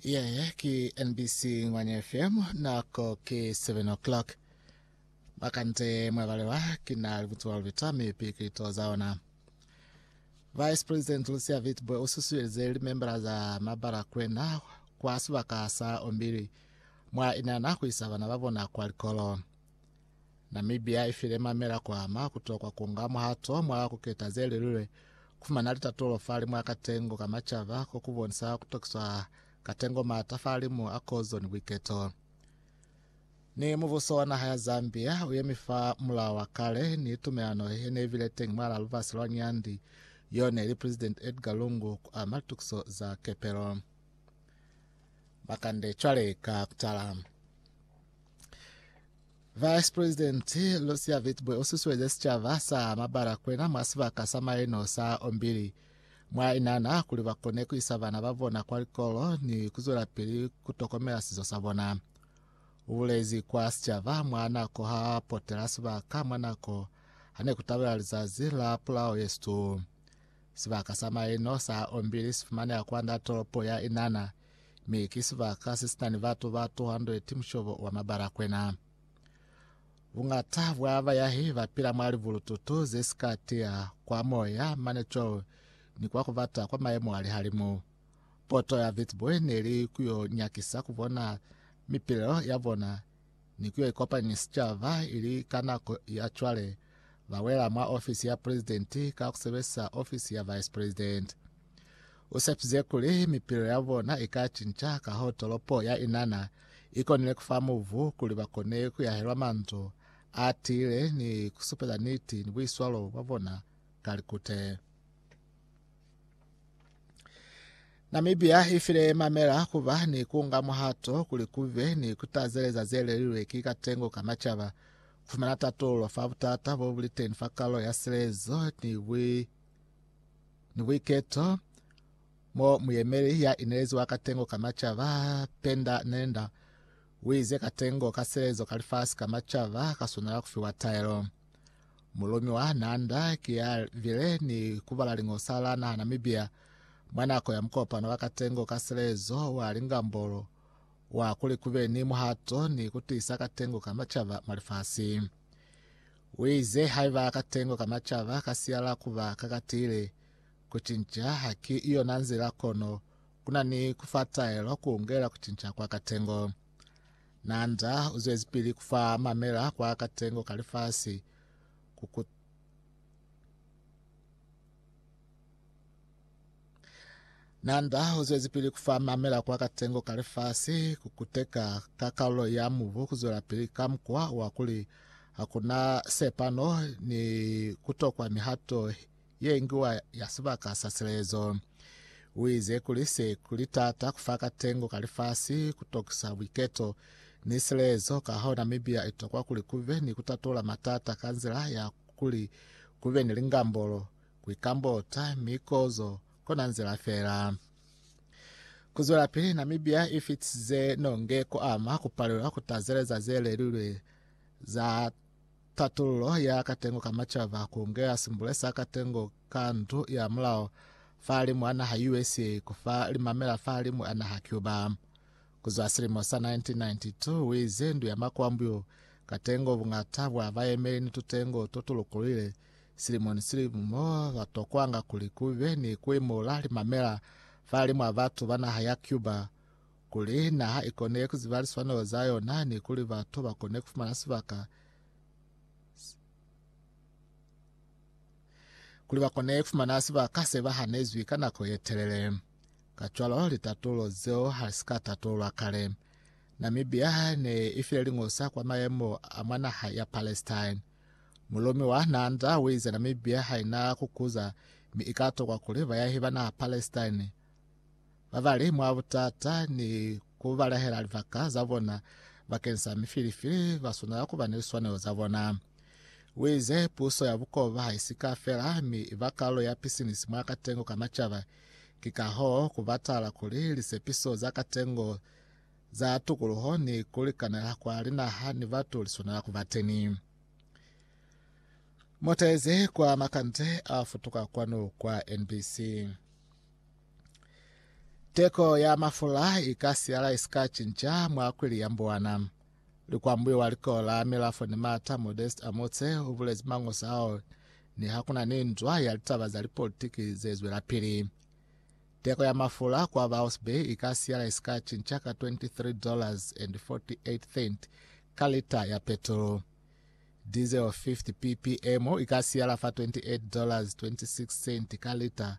Yeye ki NBC Ngwanya FM nako ki 7 o'clock. Bakante mwabalewa kina libutsiwa lubita mi pikito za ona. Vice President Lucia Vitbwe ususuelize limembala za mabala kwena kwa sibaka sa ombili mwa inana kuisa bana babona kwa likolo. Namibia i file mamela ku ama ku tokwa ku nga muhato mwa ku keta ze lilwe ku fumana litatulo fa limu a katengo ka macaba ko ku bonisa ku tokiswa katengo maata fa limu a kozo ni buiketo. Ni mubuso wa naha ya Zambia u yemi fa mulao wa kale ni tumelano ye ne bile teñi mwalaa lubasi lwa Nyandi yo ne li President Edgar Lungu ku ama litukiso za kepelo. Makande cwale ka kutala. Vice President Lucia Witbooi u susueze sicaba sa Mabalakwena mwa sibaka sa maeno sa Ombili mwa Inana kuli ba kone ku isa bana ba bona kwa likolo ni ku zwelapili ku tokomela sizo sa bona. U bulezi kwa sicaba mwa nako ha potela sibaka mwa nako ha ne ku tabela lizazi la pulao ye situ. Sibaka sa maeno sa Ombili si fumaneha kwand'a tolopo ya Inana, Mi ki sibaka sesitani batu ba 200 mushobo wa mabalakwena. Bungata bwa bayahi bapila mwa libulututu zesika tiya kwa moya mane cwalo ni kwa kubata kwa mayemo a lihalimu. Poto ya Witbooi neli kuyo nyakisa kubona mipilelo yabona ni ku ya ikopanya ni sicaba, ili ka nako ya cwale ba wela mwa ofisi ya Presidenti ka ku sebelisa ofisi ya Vice President. U sepize kuli mipilo ya bona i ka cinca kahoo tolopo ya Inanna i konile ku fa mubu kuli ba kone ku yahelwa manzwi a tiile ni ku supeza niti ni buiswalo bwa bona ka likute. Namibia i file mamela ku ba ni ku nga muhato kuli ku be ni ku tazeleza ze lelilwe ki katengo ka macaba, ku fumana tatolo fa butata bo buli teni fa kalo ya silezo ni bui ni buiketo, mo muyemeli ya inelezi wa katengo ka macaba Penda Nenda u ize katengo ka silezo ka lifasi ka macaba ka swanela ku fiwa taelo. Mulumi wa Nanda ki ya bile ni kubala liñosa la naha Namibia mwa nako ya mukopano wa katengo ka selezo wa lingambolo wa kuli kube ni muhato ni kutiisa katengo ka macaba mwa lifasi. Uize haiba katengo ka macaba ka siyala kuba ka katiile, kucinca ha ki yona nzila kono kuna ni kufa taelo ku ungela kucinca kwa katengo. Nanda uzwezipili kufa mamela kwa katengo ka lifasi ku Nanda uzwezipili kufa mamela kwa katengo ka lifasi kukuteka ka karolo ya mubu kuzwelapili ka mukwa wa kuli hakuna sepano ni kutokwa mihato ye ñwi wa ya sibaka sa silezo. U ize kuli se kuli taata ku fa katengo ka lifasi ku tokisa buiketo ni silezo, ka hona Namibia i tokwa kuli ku be ni ku tatola matata ka nzila ya kuli ku be ni lingambolo, ku ikambota, mi kozo kona nzila fela. Ku zwelapili, Namibia i fitisize nonge ku ama ku palelwa ku tazeleza ze lelilwe za Tatululo ya katengo ka macaba ku ngeha simbule sa katengo ka ndu ya mulao fahalimu a naha USA ku fa limamela fahalimu a naha Cuba. Ku zwa silimo sa 1992, u ize ndu ya makwambuyu, katengo, buñata bwa bayemeli ni tutengo to tu lukulwile silimo ni silimo mo ba tokwanga kuli ku be ni ku imula limamela fahalimu a batu ba naha ya Cuba, kuli naha i kone ku ziba liswanelo za yona ni kuli batu ba kone ku fumana sibaka kuli ba kone ku fumana sibaka se ba hanezwi ka nako ye telele. Kacwalo, litatulo zeo ha li si ka tatululwa kale. Namibia ne i file liñosa kwa mayemo a mwa naha ya Palestine. Mulumi wa Nanda u ize Namibia ha i na ku kuza mi i ka tokwa kuli bayahi ba naha Palestine Ba bali mwa butata ni ku balahela libaka za bona bakeng sa mifilifili ba swanela ku ba ni liswanelo za bona. U ize, Puso ya bukoba ha i si ka fela, mi i ba kalulo ya pisinisi mwa katengo ka macaba. Ki ka hoo ku batala kuli lisepiso za katengo za tukuluho ni ku likanela kwa linaha ni batu li swanela ku ba teni. Motezi kwa makande a futuka kwanu kwa NBC. Teko ya mafula i ka siyala i si ka cinca mwa kwili ya mbuwana. Likwambuyo wa likolo la Milafo ni Mata Modest Amotse u bulezi mangosi ao niha ku na ni nzwa ya litaba za lipolitiki ze zwelapili. Teko ya mafula kwa Vouse Bay i ka siyala i si ka cinca ka 23 dollars and 48 cent ka lita ya petrolo. Diesel 50 ppm i ka siyala fa 28 dollars 26 cent ka lita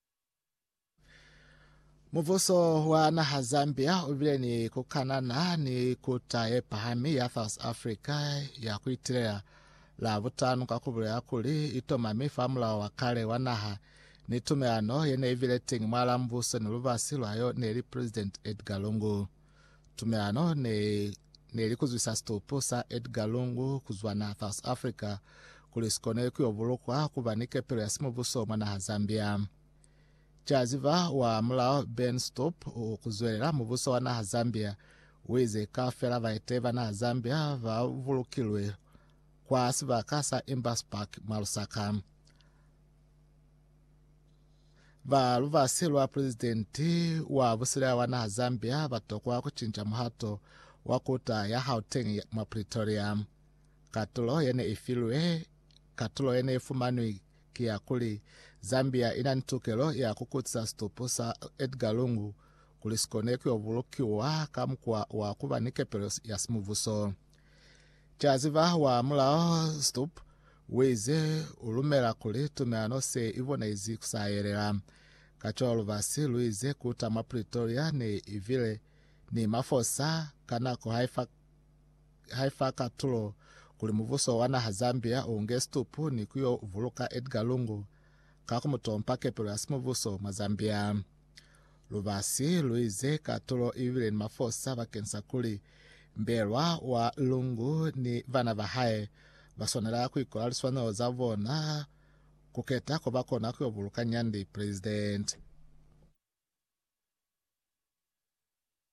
Mubuso wa naha Zambia ubile ni kukanana ni kuta ye pahami ya South Africa ya kuitilela la butano ka kubulela kuli itomami fa mulao wa kale wa naha ni tumelano yene ibile teng mwa la mbuso ni lubasi lwayo neli President Edgar Lungu. Tumelano ne ne li kuzwisa situpu sa Edgar Lungu kuzwa naha South Africa kuli sikone kuyo bulukwa kuba ni kepelo ya simubuso mwa naha Zambia. Caziva wa mulao Ben Stup u kuzwelela mubuso wa naha Zambia uize kaufela baeteyi ba naha Zambia ba bulukilwe kwa sibaka sa Embassy Park mwa Lusaka. Ba lubasi lwa pulezidenti wa busila wa naha Zambia ba tokwa ku cinca muhato wa kuta ya Gauteng mwa Pretoria. Katulo ye ne i filwe katulo ye ne i fumanwi ki ya kuli Zambia i na ni tukelo ya ku kutisa situpu sa Edgar Lungu kuli si kone ku yo bulukiwa ka mukwa wa ku ba ni kepelo ya simubuso. Ki a ziba wa mulao Stubb uize u lumela kuli tumelano se i bonezi ku sa yelela. Kacwalo basi luize kuta mwa Pretoria ne i bile ni mafosa ka nako haifa haifa katulo kuli mubuso wa naha Zambia u nge Stubb ni ku yo buluka Edgar Lungu ka ku mu tompa kepelo ya simubuso mwa Zambia. Lubasi lu ize katulo i bile ni mafosa bakeng sa kuli mbelwa wa Lungu ni bana ba hae ba swanela ku ikola liswanelo za bona ku keta ko ba kona ku yo buluka nyandi. Presidente.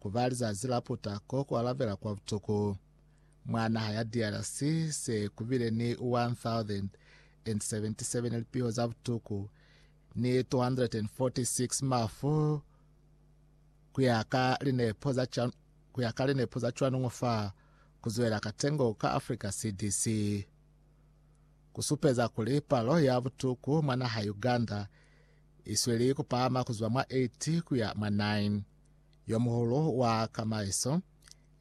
Ku ba lizazi la puta ko ku alabela kwa butuku mwa naha ya DRC, se ku bile ni 1,077 lipiho za butuku ni 246 mafu ku ya ka linepo za ca, ku ya ka linepo za cwanungu fa ku zwela katengo ka Africa CDC. Ku supeza kuli palo ya butuku mwa naha Uganda i sweli ku pahama ku zwa mwa 8 ku ya mwa 9. Yomuhulu wa kamaiso,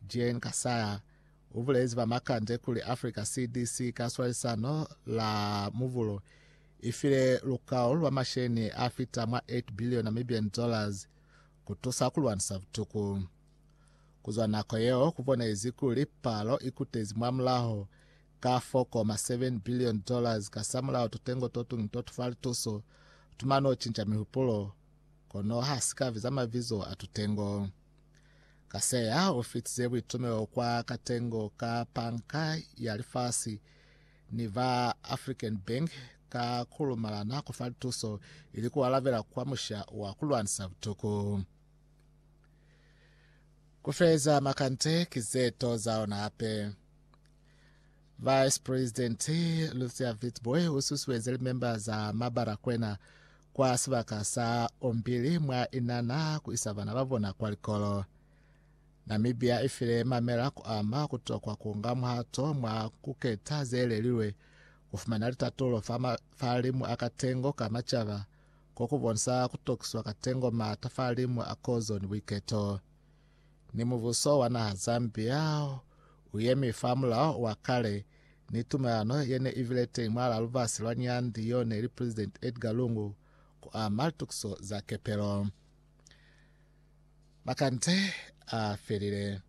Jean Kasaya, ubulezi ba makande kuli Africa CDC ka swalisano la muvulu ifile lukao lwa masheni a fita mwa 8 billion Namibian dollars kutusa kulwanisa butuku. Kuzwa nako yeo kubonezi kuli palo ikutezi mwa mulaho ka 4.7 billion dollars kasamulaho tutengo totuñi totufa lituso, tumano cinca mihupulo, kono ha si ka biza mabizo a tutengo. Kaseya u fitize buitumelo kwa katengo ka Panka ya Lifasi ni ba African Bank ka ku lumalana ku fa lituso ili ku alabela kwa musha wa ku lwanisa butuku. Ku feleza makante ki ze to za ona hape. Vice President Lucia Witbooi u susueze li memba za mabara kwena kwa sibaka sa Ombili mwa inana ku isa bana ba bona kwa likolo. Namibia i file mamela ku ama ku tokwa ku nga muhato mwa ku keta ze lelilwe, ku fumana litatulo fa mafalimu a katengo ka macaba, ko ku bonisa ku tokiswa katengo maata falimu a kozoni buiketo. Ni mubuso wa naha za Zambia u yemi fa mulao wa kale, ni tumelano ye ne i bile teñi mwalaa lubasi lwa Nyanti yo ne li Presidenti Edgar Lungu ku ama litukiso za kepelo. Makande a felile.